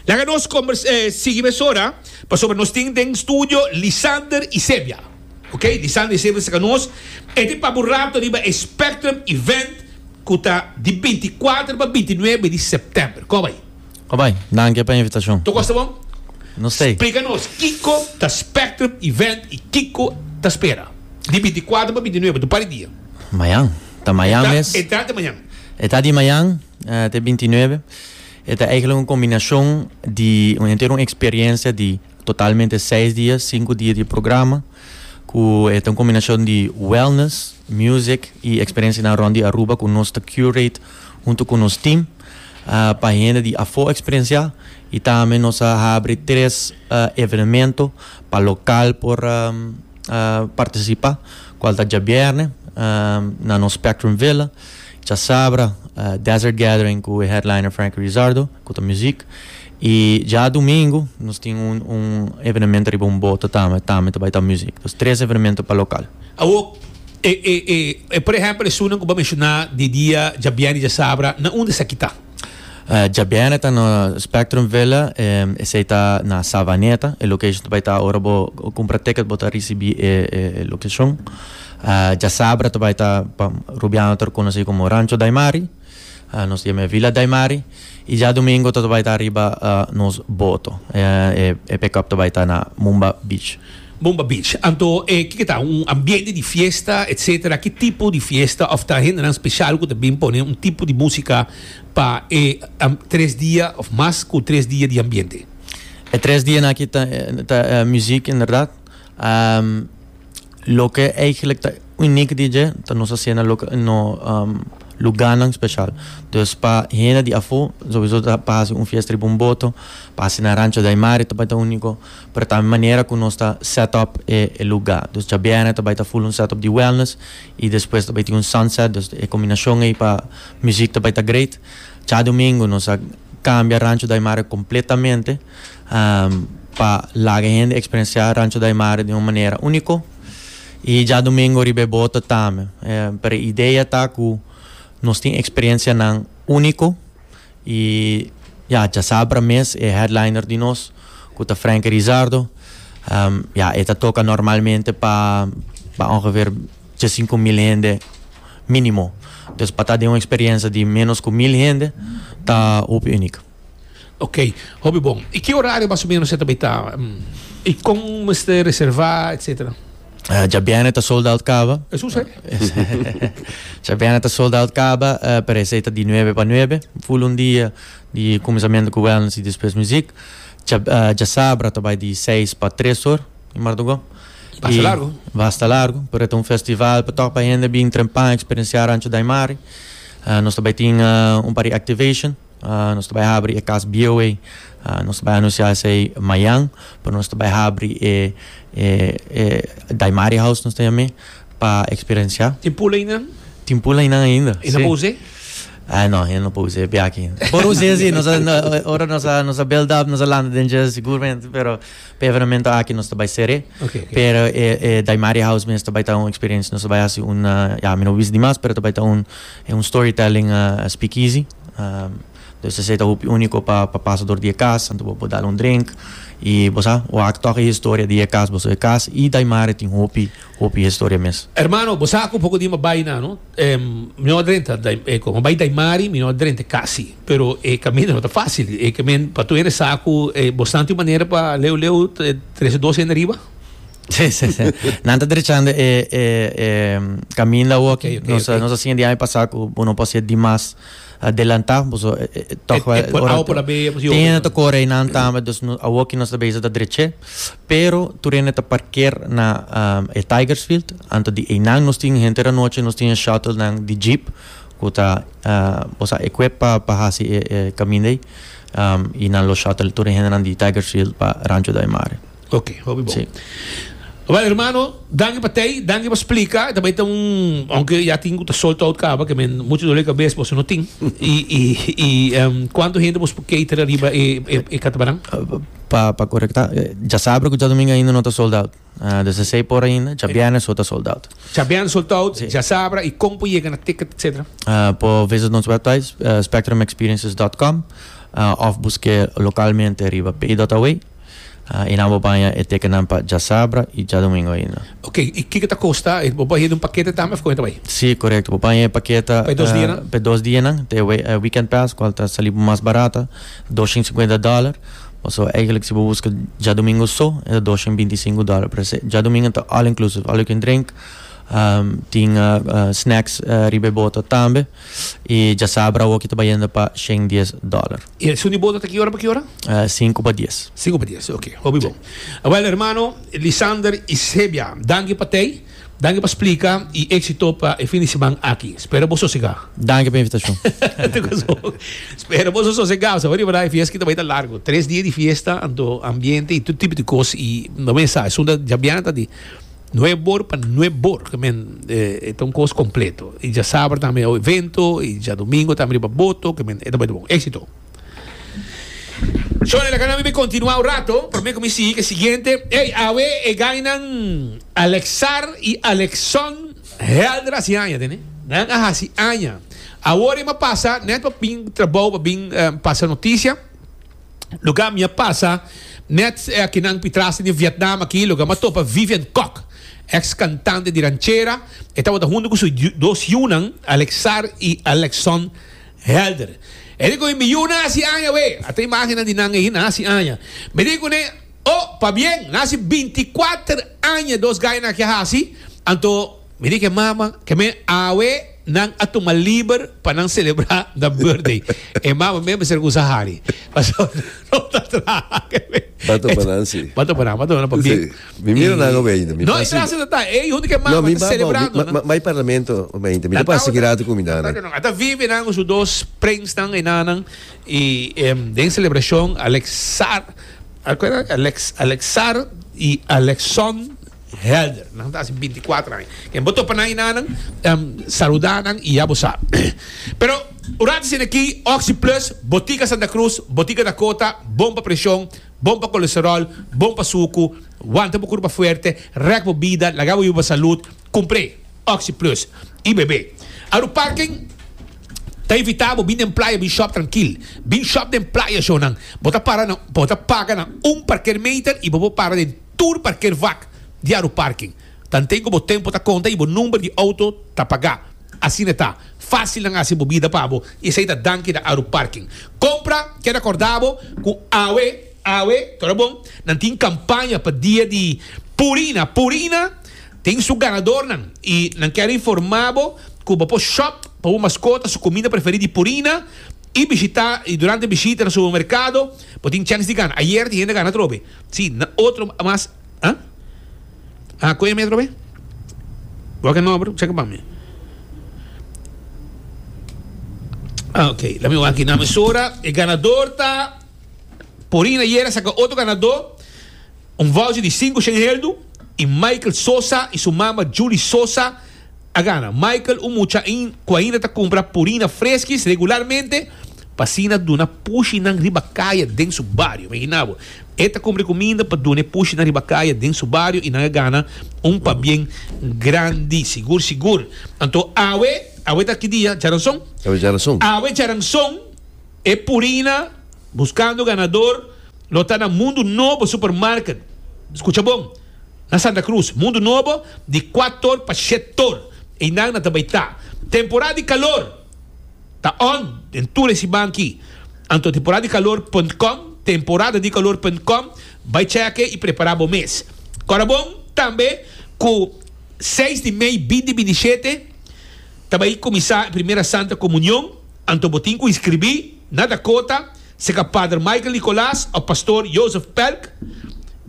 Laga nos kombers eh sigui mesora, pasobra nos tin den studio Lisander Isebia. Ok, Lisander Isebia ta saka nos e tin pa bo rato riba e Spectrum Event ku ta di binti kuater pa binti nuebe di sèptèmber. Kòb ai. Obai, danke pa invitacion. Toco asta bon? No sey. Splica nos kico ta Spectrum Event y kico ta spera di binti cuatro pa binti nuebe, tu par di dia. Mayan. Ta mayan mes. E ta di mayan. E ta di mayan te binti nuebe. E ta eigenlijk un combinacion di un entero un experiencia di totalmente seis dia, cinco dia di programa cu e ta un combinacion di wellness, music y experiencianan rond di Aruba cu nos ta curate hunto cu nos team. pa hende di afó eksperensiá i tambe nos a habri tres evenemento pa lokal por partisipá kual ta djabièrnè na nos Spectrum Villa djasabra Desert Gathering ku e headliner Frankie Rizardo ku ta muzik. Y dja domingo nos tin un un evenemento riba un boto tambe, tambe ta bai ta music. Entonces tres evenemento pa local. Awor, e e e e por ehempel esunnan cu bo a menciona di dia djabièrnè y djasabra, na unda esaki ta? Djabièrnè ta na Spectrum Villa, esey ta na Savaneta, e location ta bai ta ora bo cumpra ticket bo ta ricibi e e e locacion. Djasabra ta bai ta pa Rubiano ta reconoci como Rancho Daimari. Nos yami e Villa Daimari y djadomingo ta ta bai ta ariba nos boto. E pick up ta bai ta na Mumba Beach. Mumba Beach. Anto e kiko ta? Un ambiente di fiesta etcetera? Ki tipo di fiesta of ta hendenan special cu ta bin pone un tipo di musica pa e tres dia of mas cu tres dia di ambiente? E tres dianan aki ta ta muziek inderdaad. Um, loke eigenlijk ta uniek di dje, ta nos hacienda na loke, no um, luganan special. Dus pa hende di afo, sowieso ta pa haci un fiesta riba un boto, pa haci na Rancho de Aymari ta bai ta unico, pero ta manera cu nos ta set up e, e lugar. Dus djabièrnè ta bai ta full un set up di wellness y despues ta bai tin un sunset, dus e combinacion ey pa muziek ta bai ta great. Djadomingo nos a cambia Rancho de Aymari completamente. pa laga hende eksperensiá Rancho Daymare den un manera úniko i djadumingu riba e bota tambe. Pero e idea ta ku nos tin eksperensianan úniko i ya djasabra mes e headliner di nos ku ta Franky Rizardo ya e ta toka normalmente pa pa ongeveer djasinku mil hende mínimo. Dus pa ta den un eksperensia di ménos ku mil hende ta hopi únik. Ok, hopi bon. I ki orario mas o menos e ta bai taba? I kon mester reserva, etcetera? Uh, djabiene ta sold out caba. Es un se? djabiene ta sold out caba, uh, eh, parece ta di nueve pa nueve, full un dia di comenzamiento cu wellness y después muziek. Djab, uh, eh, djasabra ta bai di seis pa tres or, in Mardogó. Basta largo. Basta largo, pero ta un festival pa tok pa hende bin trempan, experienciar Rancho Daimari. Uh, nos ta bai tin uh, un pari activation. Nos ta bai habri e kas bieu ei. Nos ta bai anunsiá esei mañan. Pero nos ta bai habri e Daimari House, nos ta yam'é, pa eksperensiá. Tin pul einan? Tin pul einan ainda, si. E no pa us'é? No, e no pa us'é biaaki. Por us'é si, nos a, ora nos a, nos a build up, nos a lanta den dje sigurmente, pero pa e evenamento aki nos ta bai ser'é. Pero e Daimari House mes ta bai ta un eksperensia, nos ta bai hasi un, ya mi no bisa dimas, pero ta bai ta un storytelling speakeasy. Pues esey ta hopi unico pa pasa door di e cas anto bo por dal un drink y bo sa wak tok e historia di e cas boso e cas y daimare tin hopi hopi historia mes. Hermano bo sa cu poco di mi a bay na no mi no a drenta cu mi a bay daimari mi no a drenta e cas si pero e camino no ta facil e camin pato hende sa cu bo snanti manera pa leu leu trece dos hende riba. Sí, sí, sí. Nan ta drechando e, e, e caminda hoy. Okay, okay, nos, okay. nos así en día pasado que uno puede ser dimas adelantado, pues eh, eh, toch wel. Eh, ahora por la bella, pues yo. Tiene to corre nan tambe, dus no awo que nos beza ta dreche, pero tu rene ta parker na um, e Tigersfield, anto di e nan nos tin gente da noche, nos tin shuttle nan di jeep, kuta uh, pues equip pa pa hasi e, e caminda um, y nan lo shuttle tu rene nan di Tigersfield pa Rancho da Mare. Ok, hopi bon. Awel hermano, danki pa tei, danki pa splika. Ta bai ta un, aunke ya tin ku ta sold out kaba, ke men mucho dole kabes boso no tin. I i i em kuanto hende boso por cater ariba e e e katabaran? Pa pa korekta, dja sabra ku djadomingo ainda no ta sold out. Des ta sei por ainda, dja biernes so ta sold out. Dja biernes sold out, dja sabra i kon por yega na ticket etsetera? Por visit nos website spectrumexperiences dot com of buske lokalmente riba pay dot away. E nan bo baña e tekennan pa djasabra i djadumingo ainda. Ok, i kiko ta kosta? Bo baña den un pakete tambe of kon e ta bai? Sí, korekto. Bo baña e pakete Pa e dos dianan? pa e dos dianan, ta e weekend pass kual ta sali bo mas barata, doshen i singwenta dòler. Pasobra eigentlik si bo buska djadumingo so e ta doshen i binti i sinku dòler. Pero ese djadumingo ta all inclusive, all you can drink, tin snacks riba e bota tambe i djasabra awo ki ta bayende pa shen dies dòler. Y el suni boda ta ki ora pa ki ora? Uh, sinku pa dies. Sinku pa dies, ok. Hopi bon. Wel, hermano Lisander y Sebia, danki pa tei, danki pa splika y exito pa e fin di seman aki. Spero bo sosega. Danki pa invitacion. Spero bo so sosega. Sa wadi verdad, e fiesta kita bai ta largo. Tres dia di fiesta, anto ambiente y tur tipo di cos. Y no me sa, sunda jabianta di Nuep bor pa nuep bor ke men e ta un kos kompleto i dja saber tambe awe evento i dja domingo tambe riba boto ke men e ta bai ta bon. Éxito! Shone laga nan mi bai kontinuá un rato pero mi kuminsí hik e siguiente. Ey awe e gainan Alexar i Alexson Helder hasi aña te ne. Nan a hasi aña. Awor e mapasa net pa bin trabou pa bin pasa notisia. Luga mi a pasa net akinan pitras den e Vietnam aki, luga mi a topa Vivian Kok, eks kantante di ranchera, e tabata huntu ku su dos yunan Alexar i Alexson Helder. E di ku mi, mi yu na hasi aña awe, a ta imágennan di nan ei, na hasi aña. Mi di ku ne, Oh, pabien, na hasi binti kuater aña dos gainan aki a hasi, anto, Mi di ke mamanan, Ke men awe nan a tuma liber pa nan selebrá nan bùrthday? E mama mei a mester kusa hari, pasobra nan no ta traha. Ba topa nan si. Ba topa nan, ba topa nan pa bien. Si. Mi mira nan awe ainda. Mi No, e pasa. trasa ta ta. E huntu ke mama ta selebrando, no? Mi bai parlamento awe ainda. Mi ta pasa ki rato ku mi nana. Tato nan. A ta vive nan ku su dos prensnan, e nanan. I den selebrashon Alexar, Alexar i Alexon. Helder. Nan ta hasi binti i kuater aña. Ken bo topa nan i nanan, saluda nan i ya bo sa. Pero un rato asina aki, Oxi Plus, Botica Santa Cruz, Botica Dakota, bon pa presion, bon pa colesterol, bon pa sucu, wanta bo curpa fuerte, rek bo bida, laga bo yuba salud, cumpr'e Oxi Plus i bebe. Aru Parken ta invita bo bin den playa bin shop trankil. Bin shop den playa show nan. Bo ta para na, bo ta paga na un parker meter i bo por para den. tur parker vak di Aru Parking. Tanten ku bo tempu ta konta i bo number di outo ta pagá, asina ta fásil nan hasi bo bida pa bo i esei ta danki na Aru Parking. Kompra, Ker a kòrdá bo ku awe, awe, tora bon, nan tin kampaña pa dia di Purina, Purina tin su ganadornan i nan kèr informá bo ku bo por shòp pa bo maskota su kuminda preferí di Purina i bishitá i durante bishita na supermerkado bo tin chèns di gana. Ayer tin hende gana atrobe. Si, na otro mas a. A koe mi atrobe? Wak e nomber cheka pa mi. Ah, ok, laat me wak na mesora. E ganador ta Porin ayer a saka otro ganador un voucher di sinku shen heldu i Michael Sosa i su mama Julie Sosa. A gana Michael un mucha ain cu ainda ta cumpra purina freskis regularmente pa asina duna pushi nan riba caya den su bario. Imagina bo, e ta cumpri cu minder pa duna e pushi nan riba caya den su bario y nan a gana un pabien grandi, sigur sigur. Anto awe, awe ta ki dia? Djaranson? Awe Djaranson. Awe Djaranson e purina Buscando Ganador lo ta na Mundo Nobo Supermarket. Scucha bon. Na Santa Cruz, Mundo Nobo, di kuator pa shetor einan na ta bai ta. Temporada di kalor ta on den tur e siman aki. Anto temporadadikalor punt com, temporadadikalor punt com, bai chèk'e i prepará bo mes. Kòrda bon tambe ku seis di mei bindi bindi shete ta bai kuminsá e primera Santa Komunion. Anto bo tin cu inscribi na Dakota, seca Pader Michael Nicolas of Pastor Joseph Pelk,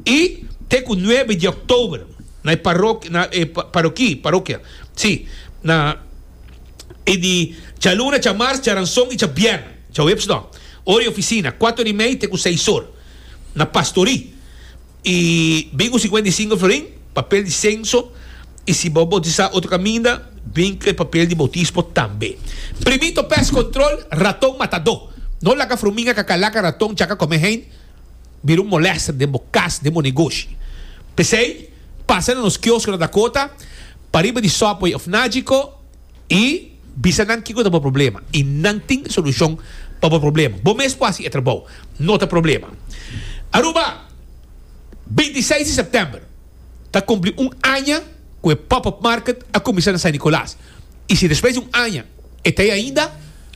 y te cu nuebe di Oktober na e parokia, na e paroki, parokia, si, na e di djaluna, djamars, djaranson y djabièrnè, djaweps no, ora y oficina, cuato ora y mei te cu seis or, na Pastori. E bin cu cincuenta y cinco florin, papel di censo, y si bo bautisá otro caminda, bin cu e papel di bautismo tambe. Primito pest control, raton matadó. No laga fruminga ca calaca raton chaca comé heen bira un molester den bo cas, den bo negoshi. P'esey, pasa na nos kiosco na Dakota, p'ariba di Subway of Nagico, I bisa nan kiko ta bo problema i nan tin solushon pa bo problema. Bo mes ku hasi e trabou. No ta problema. Aruba, binti seis di sèptèmber ta kumpli un aña ku e Pop Up Market a kuminsá na San Nikolas. I si despues di un aña e ta ei ainda,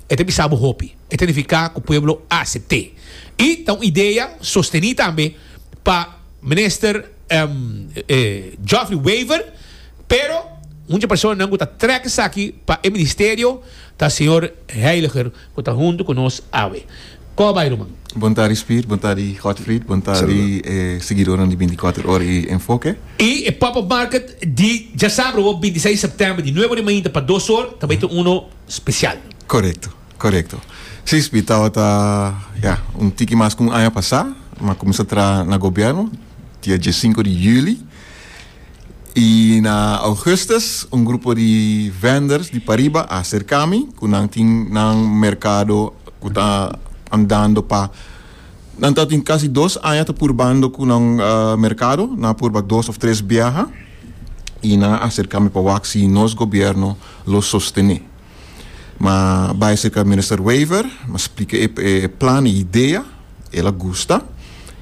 e ta bisa bo hopi. E ta nifiká ku pueblo a asept'é. I ta un idea sostení tambe pa Minister. Geoffrey Wever, pero un dje personanan ku ta trèk esaki pa e ministerio ta señor Heiliger ku ta huntu ku nos awe. Kòrda bai ruman. Bontadi Spiert, bontadi Godfried, bontadi e siguidornan di Binticuater Ora i Enfoke. I e Pop Up Market di djasabro, bintiseis sèptèmber, di nueve ora di mainta pa dos or, ta bai ta uno spesial. Korekto. Korekto. Sí, Sbi tabata ya un tiki mas ku un aña pasá mi a kuminsá traha na gobièrnu, dia diesinko di yüli. I na ougùstùs un grupo di vènders di pariba a serká mi ku nan tin nan merkado ku ta andando pa nan ta tin kasi dos aña ta purbando ku nan merkado. Nan a purba dos òf tres biaha i nan a serká mi pa wak si nos gobièrnu lo sostené. Ma bai serka Minister Wever, ma splika e plan, e idea. El a gusta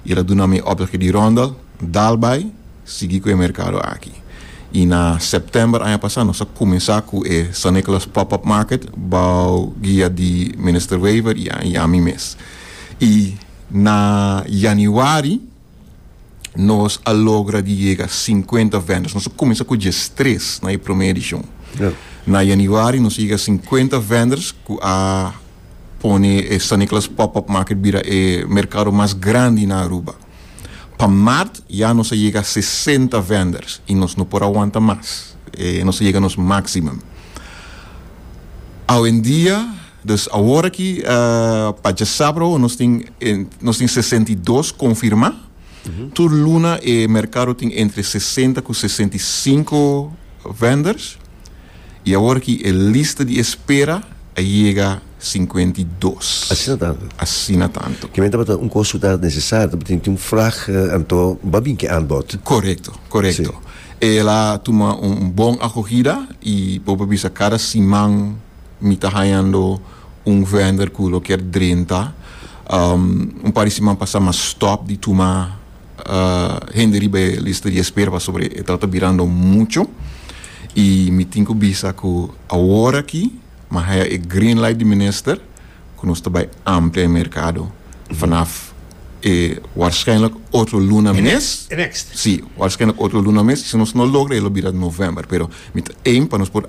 i el a duna mi e opdraki di Rondel dal bai sigui ku e merkado aki. I na sèptèmber aña pasá nos a kuminsá ku e San Nicholas Pop-Up Market bou guia di Minister Wever i ami mes. I na yanüari. nos a logra di yega sinkuenta vendors. Nos a kuminsá ku diestres na e promé edishon. Na yanüari nos a yega sinkuenta vendors ku a pone e San Niklas Pòp-Òp Market bira e merkado mas grandi na Aruba. Pa mart ya nos a yega sesenta vendors i nos no por a wanta mas. E nos a yega nos máksimum. Awendia. Dus awor aki pa djasabro nos tin nos tin sesenta i dos konfirmá. Tur luna e merkado tin entre sesenta ku sesenta i sinku venders i awor aki e lista di espera a yega sinkuenta i dos. Asina tantu. Asina tantu. Kimen tabata un kos ku ta nesesario, tabatin tin un frag, anto ba bin ki aanbod. Korekto, korekto. E la tuma un bon akohida i boba bisa kada siman mi ta hañando un vender ku lo kier drenta un par di siman pasá m'a stòp di tuma hende riba e lista di espera pasobra e trata birando muchu i mi tin ku bisa ku awor aki m'a haña e green light di minister ku nos ta bai amplia e merkado vanaf e warsshijnlijk otro luna mes si warsshijnlijk otro luna mes i si nos no logra e lo bira november pero mi ta aim pa nos por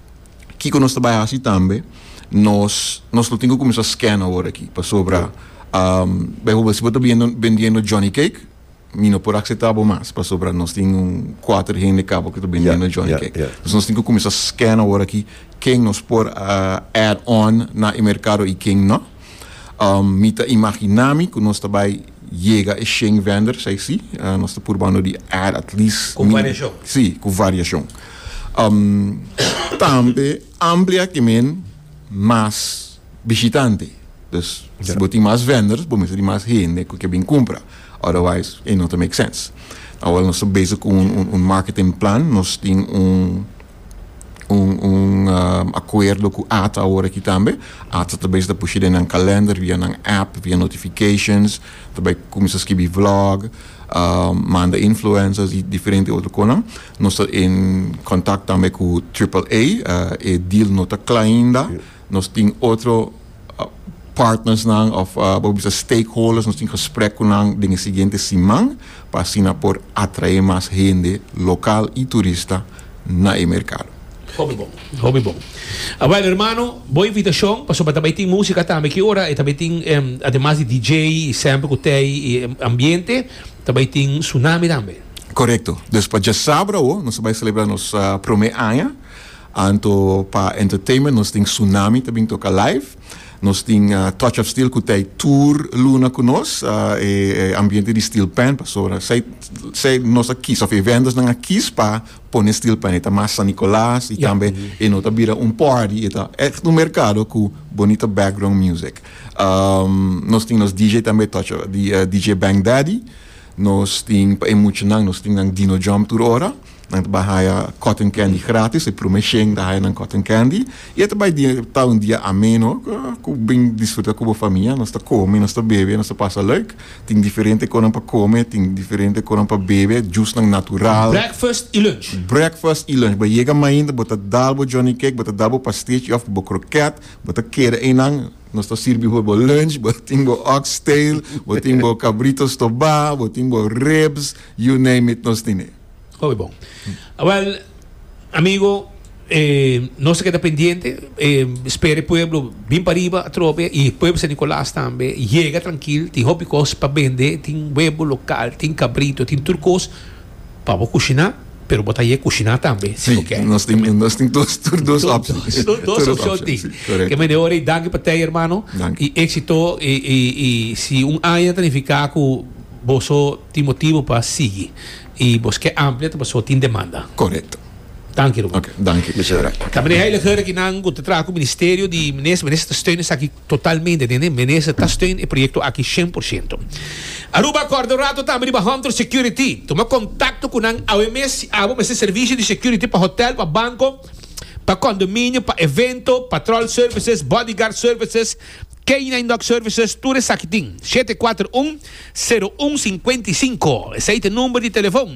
Kiko nos ta bai hasi tambe nos nos lo tin ku kuminsá scan awor aki pasobra baihorbel si bo ta biendo bendiendo Johnny Cake mi no por akseptá bo mas pasobra nos tin un kuater hende kaba ku ta bendiendo Johnny Cake entonces nos tin ku kuminsá scan awor aki ken nos por add on na e merkado i ken no mi ta imaginá mi ku nos ta bai Yega e shen venders ai si. Nos ta purbando di add at least. Ku variashon. Si, ku variashon. Tambe amplia ki men mas bishitante. Dus si bo tin mas venders bo mester tin mas hende ku ke bin kumpra. Otherwise e no ta make sense. Awor nos ta bezig ku un marketing plan. Nos tin un. un un acuerdo cu ata awor aki tambe. Ata ta bay sa ta pushi den nan calender via nan app, via notifications, ta bay cuminsa skibi vlog, manda influencers y diferente otro conan. Nos ta in contact tambe cu Triple A, e deal no ta cla ainda. Nos tin otro partnersnan of bo por bisa stakeholders, nos tin gesprek ku nan den e siguiente siman pa asina por atrae mas hende lokal i turista na e merkado. Hopi bon, hopi bon. Awèl hermano, bo invitashon pasobra ta bai tin músika tambe. Ki ora e ta bai tin, ademas di DJ i sèmpel ku tei i ambiente, ta bai tin Sunami tambe? Korekto. Dus pa djasabra awo nos ta bai selebrá nos promé aña. Anto pa entertainment nos tin Tsunami ta bin toca live. Nos tin Touch of Steel cu ta e tour luna cu nos. E ambiente di Steel Pan pasobra esey nos a kies of e vendors a kies pa pone Steel Pan. E ta mas San Nicolas y tambe e no ta bira un party e ta echt un mercado cu bonita background music. Nos tin nos DJ tambe Touch of DJ Bang Daddy. Nos tin pa e muchanan nos tin Dino Jump tur ora. Nan ta bai haya cotton candy gratis, e prome shen ta haya nan cotton candy y e ta bai dia, ta un dia ameno cu bin disfruta cu bo famia, nos ta come, nos ta bebe, nos ta pasa leuk, tin diferente conan pa come, tin diferente conan pa bebe, jusnan natural. Breakfast y lunch. Breakfast y lunch, bo yega mainta bo ta dal bo johnny cake, bo ta dal bo pastichi of bo croquet, bo ta keda einan, nos ta sirbi for bo lunch, bo tin bo ox tail, bo tin bo cabrito stoba, bo tin bo ribs, you name it nos tin e. Oke bon. Awel, amigo, e, nos ta keda pendiente, e, spera e pueblo bin pa riba atrobe, i e pueblo San Nicolas tambe, yega trankil, tin hopi kos pa bende, tin webo lokal, tin kabrito, tin tur kos pa bo kushiná, pero bo ta yeg kushiná tambe, si bo ke. Nos tin, nos tin dos, tur dos opshon. Tur dos, dos opshon tin. Korekto. Kemey de ora, i danki pa tei, hermano, Danki. i éksito, i, i, i si un aña ta nifiká ku boso tin motibu pa sigui. y bos ke amplia ta paso tin demanda. Correcto. Danki Ruben. Ok, danki. Muchas gracias. Ta meneer heiliger aki nan cu ta traha cu ministerio di minister. Minister ta steun esaki totalmente, tende? Minister ta steun e proyecto aki cien por ciento. Aruba corda un rato tambe riba Hunter Security. Tuma contacto cu nan awe mes si abo mester servicio di security pa hotel, pa banco, pa condominio, pa evento, patrol services, bodyguard services, K-nine Dog Services tur esaki tin, shete kuater un, sero un sinkuenta i sinku, esei ta e number di telefon.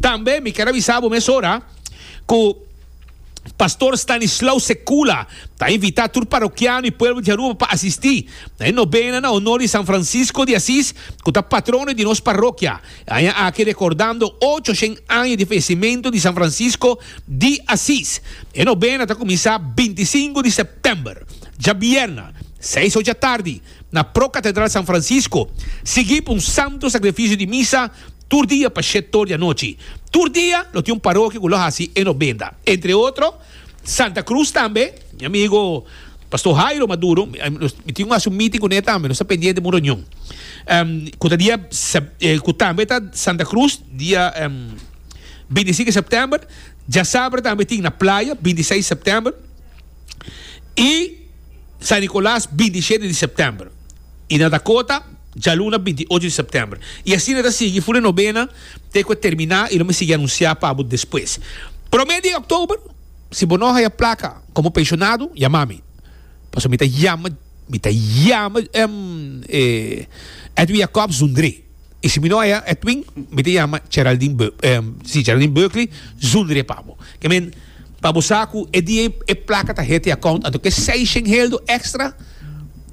Tambe mi ker a bisa bo mesora ku Pastor Stanislao Sekula ta invita tur parokiano i pueblo di Aruba pa asisti na e nobena na honor di San Francisco di Asis ku ta patrono di nos parokia e aña aki rekordando ocho shen aña di fayesimentu di San Francisco di Asis. E nobena ta kuminsá binti sinku di September. Djabièrnè, seis or dja tardi, na pro Katedral San Francisco, sigui pa un santo sakrifisio di misa tur dia pa shèt or di anochi. Tur dia lo tin un parokia ku lo hasi e nobenda. Entre otro, Santa Cruz tambe, mi amigo Pastor Jairo Maduro, mi tin ku hasi un meeting kuné tambe, nos ta pendiente pa un reunion. Ku ta dia, ku tambe ta Santa Cruz, dia binti sinke sèptèmber, djasabra tambe tin na playa, binti seis sèptèmber. y San Nicolas binti y shete di september y na Dakota djaluna binti y ocho di september y asina e ta sigui funa e nobena te cu e termina y lo mi sigui anuncia pa bo despues prome di october si bo no haya placa como pensionado yama mi pasobra mi ta yama mi ta yama Edwin Jacobs Zundré. Y si mi no haya Edwin, mi ta yama Geraldine Be eh, si, Geraldine Berkeley, zonder e pabo. Que men, pa bo sa cu e dia e placa ta hete account, anto que seishen heldo extra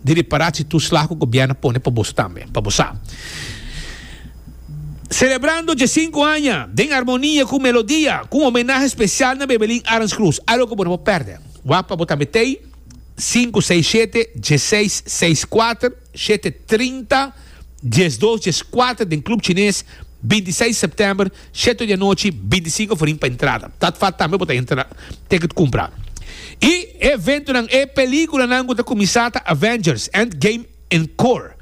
di reparatie toeslag cu gobierno pone pa boso tambe, pa bo sa. Celebrando dje sinku aña den armonia cu melodia, cu un homenahe special na Bebelin Arends Cruz. Algo cu bo no por perde. Wak pa bo tambe tei, sinku seis shete, dje seis, seis kuater. Shete trinta, dies dos, dies kuater den Club Chines, binti i seis sèptèmber, sheto di anochi, binti i sinku for in pa entrada. Dat fat tambe bo ta entra tèkèt kumpra. E eventonan e pelikulanan ku ta kuminsá ta Avengers, Endgame Encore,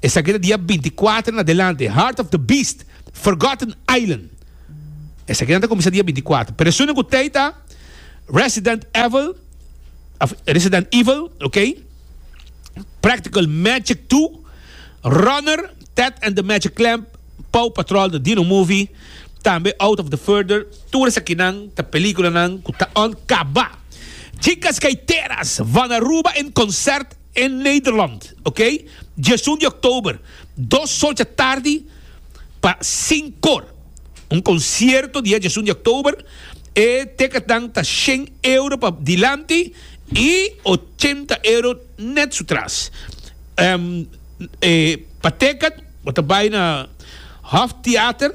esaki ta dia binti i kuater en adelante, Heart of the Beast, Forgotten Island, esakinan ta kuminsá dia binti i kuater, pero esun den ku tei ta Resident Evil, Resident Evil, ok. Practical Magic 2, Runner, Ted and the Magic Clamp, Paw Patrol, The Dino Movie, tambe Out of the Further, tur esakinan ta peliculanan cu ta on caba. Chicas Gaiteras, Vanaruba en concert. E Nederland, ok, diesun di oktober, dos solcha tardi, pa sinkor, un konsierto dia diesun di oktober, e teketnan ta shen euro pa dilanti i ochenta euro nèt su tras. Ehm, e pa teket bo ta bai na Hoftheater.